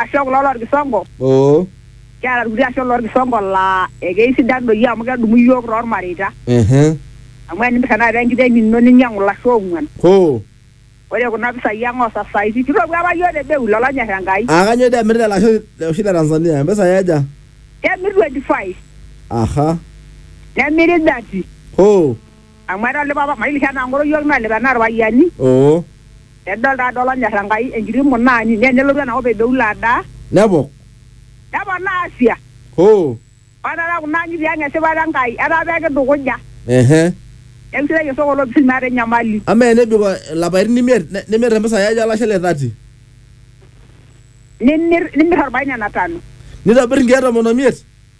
ashe kulo lorkisongo oo kiata irkuti ashe lorkisongo laa ekeisidan doi amu kedumu iyiook tormareita ehe amu enimirr tenakata enkiteng ino ninyiang'u ilashe oong'uan hoo ore kuna pisai ang osasaitin kitopuo apa iyiook te bei lolo onyorr Enkai aa kanyoo doi emirita ele ashe le- oshi le Tanzania mpisai aja kemir 25 aha nemiri 30 hoo Amu eeta ole papa mailisha anaa ng'oro iyiook naa lepe anaa ilpayiani. Oo. Nedol taata olonyor Enkai enkiti munaani nee nelotu ena kop e Beula adaa. Nepok. Neponaa Asia. Hoo. Ore taata kuna ang'itie ang e sipata e Nkai etaa pee kitukuja. Ehe. Neeku sidai osoko o lopisil meeta enyamali. Amaa enebik ilapaitin imiet nimir impisai aja olashe le thati? Nimir nimir olbae nena tano. Nitobir nkeek tomon o miet?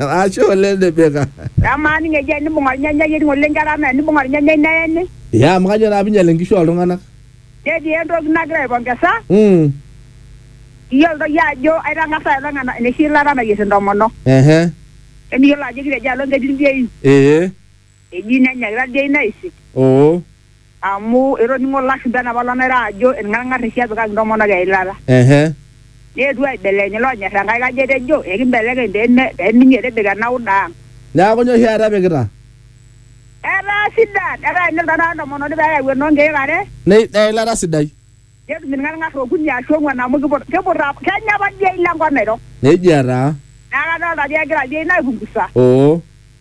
Ashe oleng tipika. Amaa ninye eji enibung ornyanyai ening oleng ketaa amaa enibung ornyanyai neeni. Ya amu kajo naa pinyal inkishu oltung'anak. Netii entoki nagira aipongesa. Mm. Iyiolo doi ajo aitang'asa aipang ena enoshi ilata nayier intomonok. Ehe. Emiyiolo ajo kitejo alo ketii ildiain. Ee. Eji nenyaki tadii ina eisit. Oo. Amu etoning'o Lashumpa enapa lo Naira ajo ilng'arng'ar eshi epikaki intomonok eilata. Ehe. Neetuo aibelekeny iloonyor Enkai kaji etejo ekimbelekeny pee me pee minyi etibika ena uda ang. Neaku nyoo oshi taata epikita? Etaa sidan. Etaa enelo taata entomononi pee eyau enoo nkeek are. Nei eilata sidai. Netum ilng'arng'ar okuni aashu ong'uan amu kiput kiput apa kenya apa dii eila enkop Nairok. Neijia taa. Neaku adolita ajo egira dii ina aipungusa. Oo.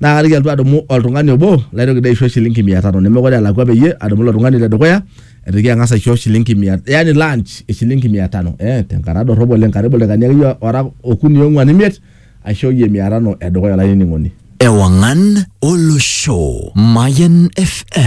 naa kaliki alotu adumu oltung'ani obo laitoki dii aisho shilingi mia tano nemekure elakua peyie adumu ilo tung'ani le dukuya aitoki ang'as aisho shilingi mia yani lunch e shilingi mia tano eh tenkata dorrop oleng karibu ildaikani akeyie ora okuni ong'uan imiet aishooyie mia tano edukuya olainining'oni. Ewangan Olosho, Mayan FM.